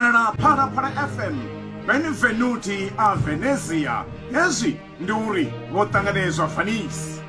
Phala Phala Phala FM, Benvenuti a Venezia. Hezwi ndi uri vho ṱanganedzwa Venice.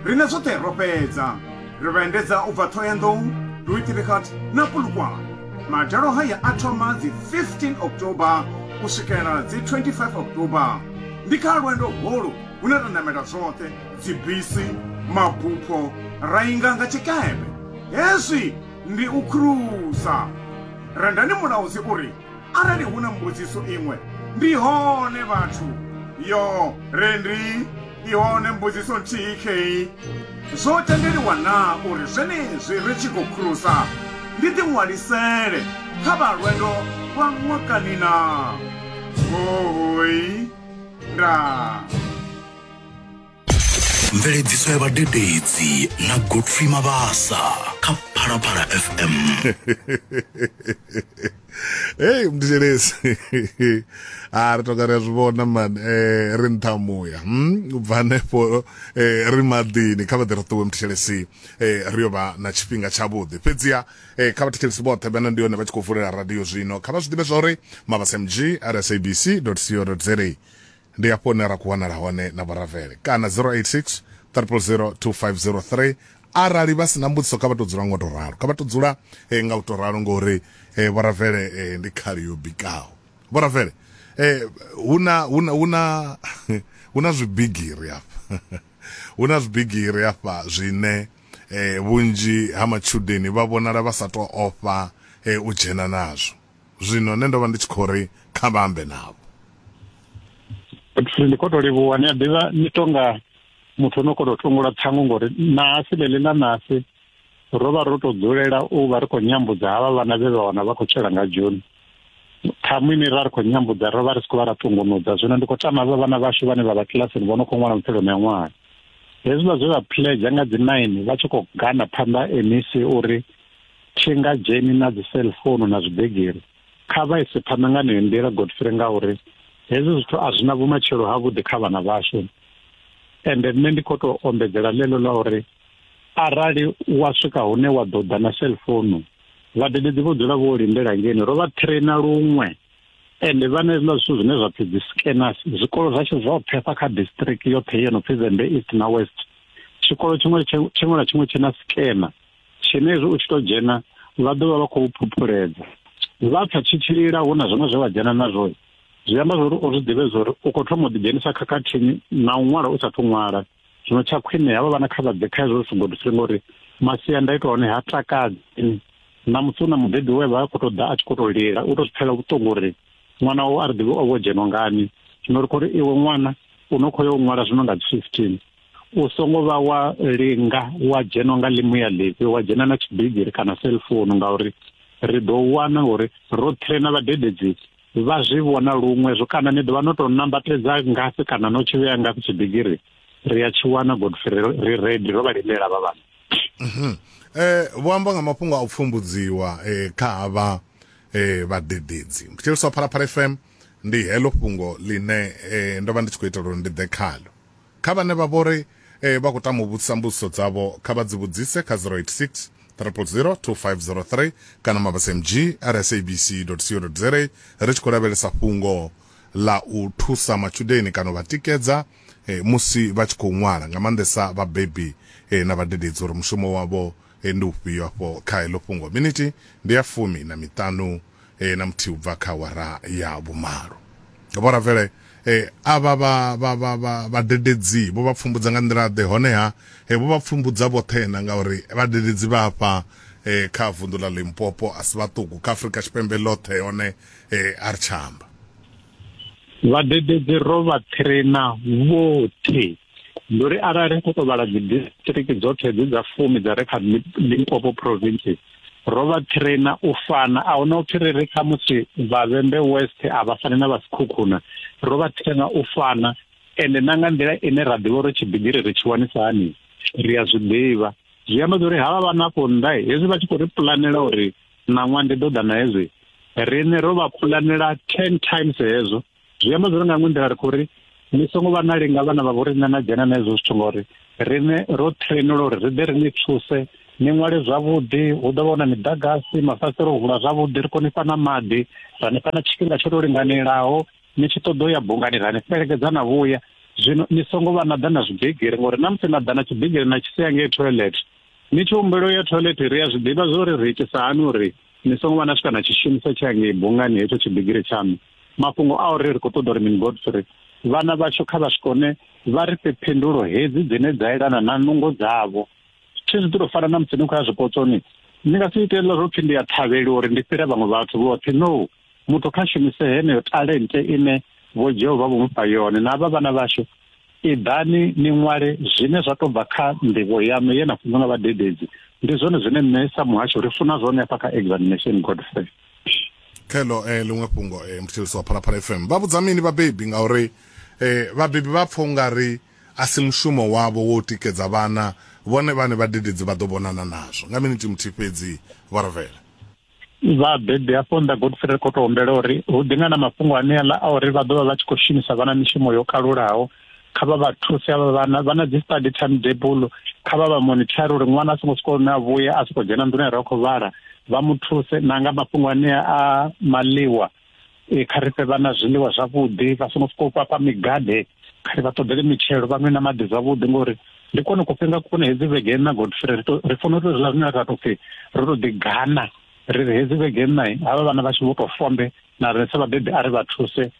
Rine zwoṱhe ro fhedza. Ri vha endedza u bva Thohoyandou, Luitirigat na Polokwane. Madalo haya a thoma dzi 15 October u swikela dzi 25 October. Ndi kha lwendo holu hune ra namela zwoṱhe dzibisi, mabupho, ra inga nga tshikepe. Hezwi Ndi u krusa. Rendani mulaudzi u ri, Arali hu na mbudziso iṅwe, ndi hone vhathu. Yo, Rendi, i hone mbudziso nthihi khei. Zwo tendeliwa naa uri zwenezwi ri tshi khou krusa ndi ḓiṅwalisele kha vha lwendo lwa ṅwakani naa? Hoooi. Ndaa. mveledziso ya vhadededzi na godfrey mabasa kha phalaphala fm heyi mdishelezi a ri toka ri a zwi vhona mani um ri nṱha muya mm, u bva hanefho um ri maḓini kha vha ḓi ri ṱuwe mdishelezi um ri yo vha na tshifhinga tshavhuḓi fhedziha um kha vhathetshelesi vhoṱhe vhana ndi yone vha tshi khou vulela radio zwino kha vha zwi ḓivhe zwa uri mabasa mg rsabc co za Ndi hafho hune ra khou wanala hone na Vhoravele kana 086 000 2503 arali vha si na mbudziso kha vha tou dzula ngo tou ralo, kha vha tou dzula nga u tou ralo ngori Vhoravele ndi khali yo bikaho. Vhoravele hu na hu na hu na hu na zwibigiri hafha hu na zwibigiri hafha zwine vhunzhi ha matshudeni vha vhonala vha sa tou ofha u dzhena nazwo. zwino nṋe ndo vha ndi tshi khou ri kha vha ambe navho ndi khou tou livhuwa ni a ḓivha ni tonga muthu o no khou tou tungula ṱhangu ngori nahasi ḽeḽi ḽa nahasi ro vha ro tou dzulela u vha ri khou nyambudza havha vhana vhe vha wana vha khou tshela nga joni ṱhamu ine ra ri khou nyambudza ro vha ri si khou vha ra ṱungunudza zwino ndi khou tama vha vhana vhashu vhane vha vha kilasini vho no khou ṅwala mupfheloni ya ṅwaha hezwiḽa zwe vha pledza nga dzi nine vha tshi khou gana phanḓa mec uri Tshengadzheni na dzi cell phone na zwibegiri kha vha ise phanḓa nga neyo nḓila Godfrey ngauri hezwi zwithu a zwi na vhumatshelo ha vhuḓi kha vhana vhashu ende nṋe ndi khou tou ombedzela ḽeḽo ḽa uri arali wa swika hune wa ḓo ḓa na cell phone vhadededzi vho dzula vho lindela ngeni ro vha traina luṅwe ende vha na hezwiḽa zwithu zwine zwa pfi dzi scanners zwikolo zwashu zwo pfefa kha district yoṱhe yo no pfi zembe east na west tshikolo tshiṅwe tshiṅwe na tshiṅwe tshi na scanner tshenezwo u tshi tou dzhena vha ḓo vha vha khou phuphuledza vha pfa tshi tshilila hu na zwiṅwe zwe vha dzhena nazwo zwi amba zwori o zwi ḓivhe zwori u khou thoma u ḓidzhenisa khakhathini na u ṅwala u sathu ṅwala zwino tsha khwine havha vhana kha vha ḓe kha hezwo zwithu gudisile ngori masiandaitwa hone ha takadzi na musi u na mubebi we vha khou tou ḓa a tshi khou tou lila u tou zwi pfela vhuṱungu uri ṅwana wawe a ri ḓivhe o vho dzhenwa ngani zwino ri khou ri iwe ṅwana u no khou ya u ṅwala zwino nga dzi fifteen u songo vha wa linga wa dzhena nga ḽimu ya ḽifhi wa dzhena na tshibigiri kana cellphone ngauri ri ḓo wana uri roṱhe na vhadededzi vha zwi vhona luṅwe zwo kana ni ḓovha no tou nambatedza ngafhi kana no tshi vhea ngafhi tshibigiri ri a tshi wana godfrey ri redi ro vha limela vha vhana mhm. eh, vho amba nga mafhungo a u pfumbudziwa eh, kha havha eh, vhadededzi thetshelisa phalaphala fm ndi heḽo fhungo ḽine eh, ndo vha ndi tshi khou itela uri ndi ḓe khalo kha vhane vha vho ri eh, vha khou tama u vhudzisa mbudziso dzavho kha vha dzi vhudzise kha 086 000 2503 kana mabasmg ari sabc co za ri tshi khou lavhelesa fhungo ḽa u thusa matshudeni kana u vha tikedza eh, musi vha tshi khou ṅwala nga maanḓesa vhabebi eh, na vhadededzi uri mushumo wavho Ee, ndi ufhio afho kha heḽo fhungo? Minithi ndi ya fumi na miṱanu na muthihi u bva kha awara ya vhumalo. Vho-Ravele avha vha, vha, vha, vha, vhadededzi vho vha pfumbudza nga nḓila-ḓe? Honeha, vho vha pfumbudza vhoṱhe-na, ngauri vhadededzi vha afha kha vunḓu ḽa Limpopo a si vhaṱuku, kha Afrika Tshipembe ḽoṱhe. Hone a ri tsha amba. Vhadededzi ro vha thirena vhoṱhe. ndi uri arali ri khou tou vhala dzi district dzoṱhe dzi dza fumi dza re kha limpopo province ro vha traina u fana a huna upfi ri ri kha musi vhavhembe west a vha fani na vhasikhukhuna ro vha traina u fana ende na nga nḓila ine ra ḓivha uri tshibigiri ri tshi wanisa hani ri a zwi ḓivha zwi amba uri havha vha nafho nnḓa hezwi vha tshi khou ri pulanela uri ṋaṅwa ndi ḓo ḓa na hezwi riṋe ro vha pulanela ten times hezwo zwi amba zwone nga nḓila ri khou ri ni songo vha na linga vhana vha vho riṋe na dzhena na hezwo zwithu ngori riṋe ro trainela uri ri ḓe ri ni thuse ni ṅwale zwavhuḓi hu ḓo vha hu na miḓagasi mafasiṱere o vula zwavhuḓi ri kone fha na maḓi ra ni fha na tshifhinga tsho to linganelaho ni tshi ṱoḓa u ya bungani ra ni fhelekedza na vhuya zwino ni songo vha na ḓa na zwibigiri ngori na musi na ḓa na tshibigiri na tshi sia ngei toilet ni tshi humbelo ya toilet ri a zwi ḓivha zwo ri ri itisa hani uri ni songo vha na swika na tshishumisa tsha ngei bungani hetsho tshibigiri tshaṋu mafhungo a uri ri khou ṱoḓa uri mini godfrey vhana vhashu kha vha swikone vha ri fhe phindulo hedzi dzine dza elana na nungo dzavho thi zwi ḓo fana na musi ni khou ya zwipotsoni ni nga si ite hezwiḽa zwo pfhi ndi ya thavheli uri ndi fhira vhaṅwe vhathu vhoṱhe no muthu kha shumise heneyo talente ine vho jehova vho mufha yone na vha vhana vhashu iḓani ni ṅwale zwine zwa tou bva kha nḓivho yaṋu ye na funzwa nga vhadededzi ndi zwone zwine nṋe sa muhasho ri funa zwone hafha kha examination godfrey khelo eh, ḽiṅwe fhungo eh, muthetshelisi wa phalaphala fm vha vhudza mini vhabebi ngauri eh, vhabebi vha pfha ungari a si mushumo wavho wo tikedza vhana vhone vhane vhadededzi vha ḓo vhonana nazwo nga minithi muthihi fhedzi vho ravhela vhabebi hafho nda godfrey ri khou tou humbela uri hu ḓi nga na mafhungo aneaḽa a uri vha ḓo vha vha tshi khou shumisa vhana mishumo yo kalulaho kha vha vha thuse avha vhana vha na dzi study time table kha vha vha monitor uri ṅwana a songo swika hune a vhuya a soko dzhena nḓuni ra khou vhala vha mu thuse na nga mafhungo ane a maliwa e kha ri fhe vhana zwiḽiwa zwavhuḓi vha songo swika u fhafha migade kha ri vha ṱoḓele mitshelo vha nwe na maḓi zwavhuḓi ngori ndi kone ku fhinga kune hedzi vhege na godfrey ri to ri funa uri zwiḽa zwine ra to pfhi ro to ḓi gana ri ri hedzi vhege nṋa havha vhana vha tshi vho to fombe na rine sa vhabebi a ri vha thuse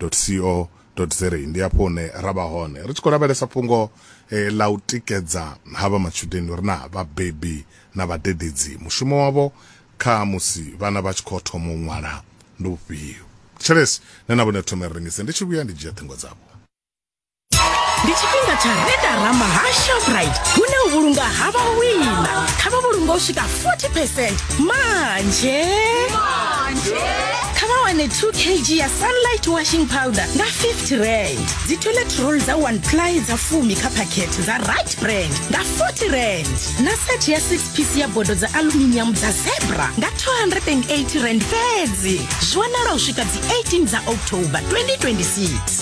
co za ndi hafho hune ra vha hone ri tshi khou lavhelesa fhungo eh, ḽa u tikedza ha vha matshudeni uri na vhabebi na vhadededzi mushumo wavho kha musi vhana vha tshi khou thoma u ṅwala ndi ufhio tshelesi nṋe na vhone thome ri rengise ndi tshi vhuya ndi dzhia ṱhingo dzavho ndi tshifhinga tsha redarama ha shoprite hune u vhulunga ha vhawina kha vha vhulunga u swika 40 percent manje kha vha wane 2 kg ya sunlight washing powder nga 50 rand dzi toilet roll dza 1 ply dza fumi kha phakhethe dza right brand nga 40 rand na set ya 6 piece ya bodo dza aluminium dza zebra nga 280 rand fhedzi zwi wanala u swika dzi 18 dza october 2026